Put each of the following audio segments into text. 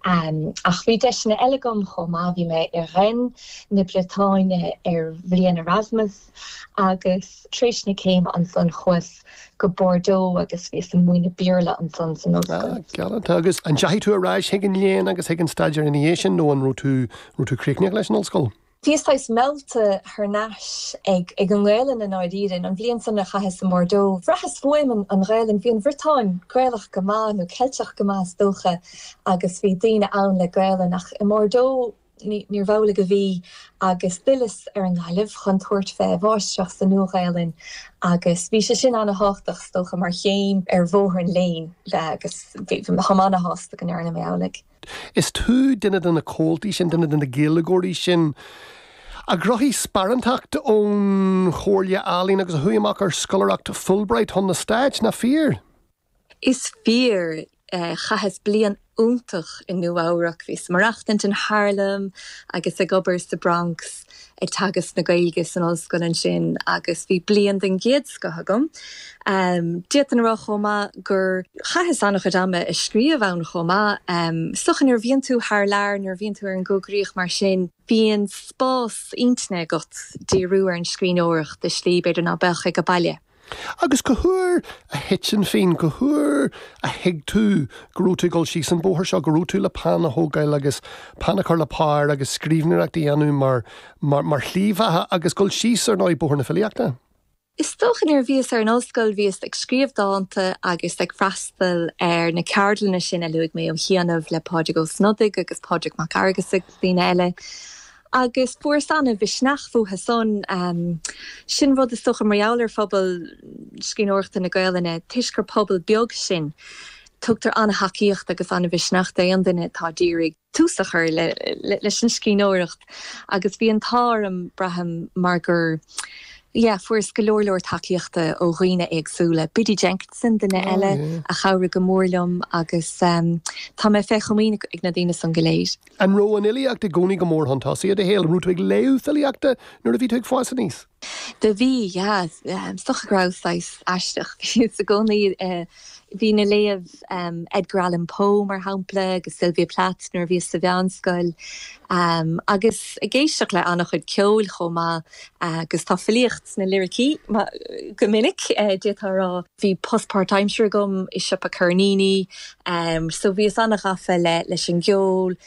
Ach bhí deiseanna eile agam chomh maith, bhí mé i Rennes na Briotáine ar bhliain Erasmus agus tar éis na céime ansan chuas go Bordeaux agus bhíos ag múineadh Béarla ansan san ollscoil. Ah, galánta. Agus an ndeachaigh tú ar ais chuig an léann agus chuig an staidéar ina dhiaidh sin nó an raibh tú, raibh tú críochnaíoch leis an ollscoil? Bhíos saghas meallta thar n-ais ag an nGaelainn i ndáiríre. An bhliain san a chaitheas i mBordeaux, bhraitheas uaim an Ghaelainn. Bhí an Bhriotáin Gaelach go maith, nó Ceilteach go maith is dócha, agus bhí daoine ann le Gaelainn, ach i mBordeaux níorbh amhlaidh a bhí, agus d'fhilleas ar an nGaillimh chun tabhairt fé mháistreacht sa Nua-Ghaelainn, agus bhí sé sin ana-thábhachtach is dócha mar chéim ar bhóthar an léinn, agus táim ana-shásta go ndearna mé amhlaidh. Is tú duine de na comhaltaí sin, duine de na Gaeilgeoirí sin a ghnóthaigh sparántacht ón Chomhairle Ealaíon agus a chuaigh amach ar scoláireacht Fulbright chun na Stáit, nach fíor? Is fíor. Chaitheas bliain iontach i Nua-Eabhrac. Bhíos ag maireachtaint in Harlem agus ag obair sa Bronx. ag teagasc na Gaeilge san ollscoil ansin agus bhí bliain den gcéad scoth agam. D'fhéadfainn a rá chomh maith gur chaitheas an-chuid ama ag scríobh ann chomh maith. Is dócha nuair a bhíonn tú thar lear, nuair a bhíonn tú ar an gcoigríoch mar sin, bíonn spás intinne agat díriú ar an scríbhneoireacht i slí, b'fhéidir, ná beadh aige baile. Agus cá huair a thit an phingin, cá huair a thuig tú go raibh tú ag dul síos an bóthar seo, go raibh tú le peann a thógáil agus peann a chur le pár agus scríbhneoireacht a dhéanamh mar, mar, mar shlí bheatha agus dul síos, ar ndóigh, bóthar na filíochta? Is dócha nuair a bhíos ar an ollscoil bhíos ag scríobh dánta agus ag freastal ar na ceardlanna sin a luaigh mé ó chianaibh le Pádraig Ó Snodaigh agus Pádraig Mac Fhearghusa agus daoine eile Agus fuaras ana mhisneach uathu san. Sin rud is dócha mar gheall ar phobal scríbhneoireachta na Gaelainne, toisc gur pobal beag sinn, tugtar ana thacaíocht agus ana mhisneach d'aon duine atá ag iarraidh tús a chur leis an scríbhneoireacht agus bhí an t-ádh orm, braithim, mar gur, yeah, fuaras go leor leor tacaíochta ó dhaoine éagsúla. Biddy Jenkinson, duine eile a chabhraigh go mór liom agus tá mé fé chomaoin ag na daoine san go léir. An raibh an fhilíocht i gcónaí go mór chun tosaigh i do shaol? An raibh tú ag léamh filíochta nuair a bhí tú ag fás aníos? Do bhí, yeah. Is dócha go rabhas saghas aisteach i gcónaí. Bhínn ag léamh Edgar Allan Poe, mar shampla, agus Sylvia Plath nuair a bhíos sa mheánscoil. Agus ag éisteacht le an-chuid ceoil chomh maith. Agus tá filíocht sna liricí go minic, d'fhéadfá a rá. bhí post páirtaimsire agam i siopa ceirníní so bhíos an-ghafa leis an gceol,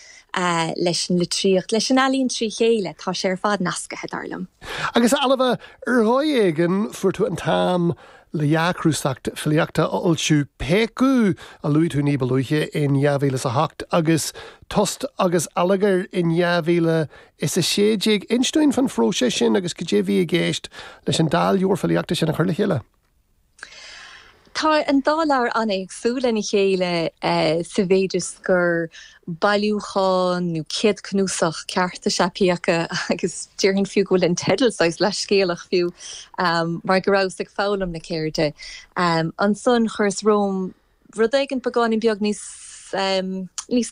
leis an litríocht, leis an ealaín trí chéile, tá sé ar fad nascaithe, dar liom. Agus, a Ailbhe, ar dhóigh éigin fuair tú an t-am le dhá chnuasach filíochta a fhoilsiú, Péacadh, a luaigh tú ní ba luaithe, in 2008, agus Tost agus Allagar in 2016. Ins dúinn fán phróiseas sin agus cad é bhí i gceist leis an dá leabhar filíochta sin a chur le chéile? Tá an dá leabhar an-éagsúil lena chéile sa mhéid is gur bailiúchán nó céadchnuasach ceart is ea Péacadh agus déarfainn fiú go bhfuil an teideal saghas leathscéalach fiú mar go rabhas ag foghlaim na ceirde. Ansan chuireas romham. rud éigin beagáinín beag níos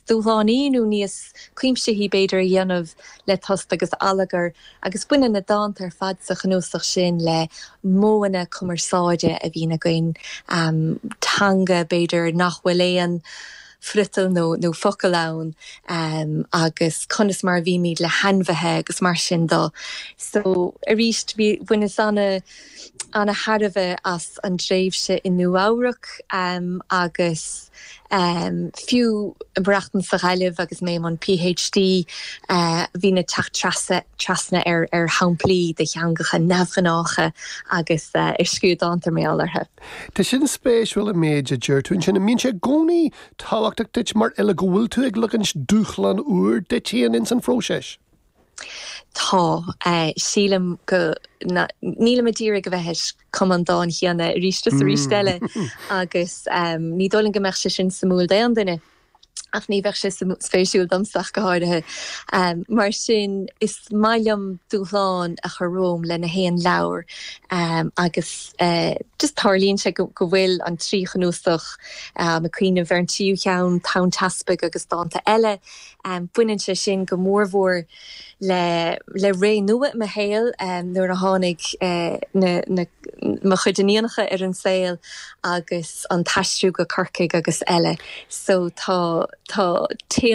dúshlánaí nó níos cuimsithí, b'fhéidir, a dhéanamh le Tost agus Allagar agus baineann na dánta ar fad sa chnuasach sin le modhanna cumarsáide a bhíonn againn, teanga, b'fhéidir, nach bhfuil aon friotal nó focal ann agus conas mar a bhímid le hainmhithe agus mar sin de. So, arís, bhaineas ana. ana-thairbhe as an dtréimhse i Nua-Eabhrac agus fiú i mo mhaireachtaint sa Ghaillimh agus mé i mbun Ph D bhínn ag teacht trasna trasna ar shamplaí de theangacha neamhghnácha agus ar scríobh dánta mé orthu. Tá sin spéisiúil an méid a deir tú ansin. An mbíonn sé i gcónaí tábhachtach duit mar fhile go bhfuil tú ag leagaint dúshlán úr duit féin ins an phróiseas? Tá. Sílim go, níl mé ag iarraidh a bheith ag cumadh an dáin chéanna arís is arís eile agus ní dóigh liom go mbeadh sé sin suimiúil d'aon duine ach ní bheadh sé spéisiúil domsa ach go háirithe. Mar sin, is maith liom dúshlán a chur romham le haon leabhar agus just tarlaíonn sé go bhfuil an trí chnuasach, táim ag cuimhneamh ar an tríú cheann, Tonn Teaspaigh agus Dánta Eile, Baineann sé sin go mór mór le le ré nua i mo shaol nuair a tháinig mo chuid iníonacha ar an saol agus an t-aistriú go Corcaigh agus eile so tá tá téama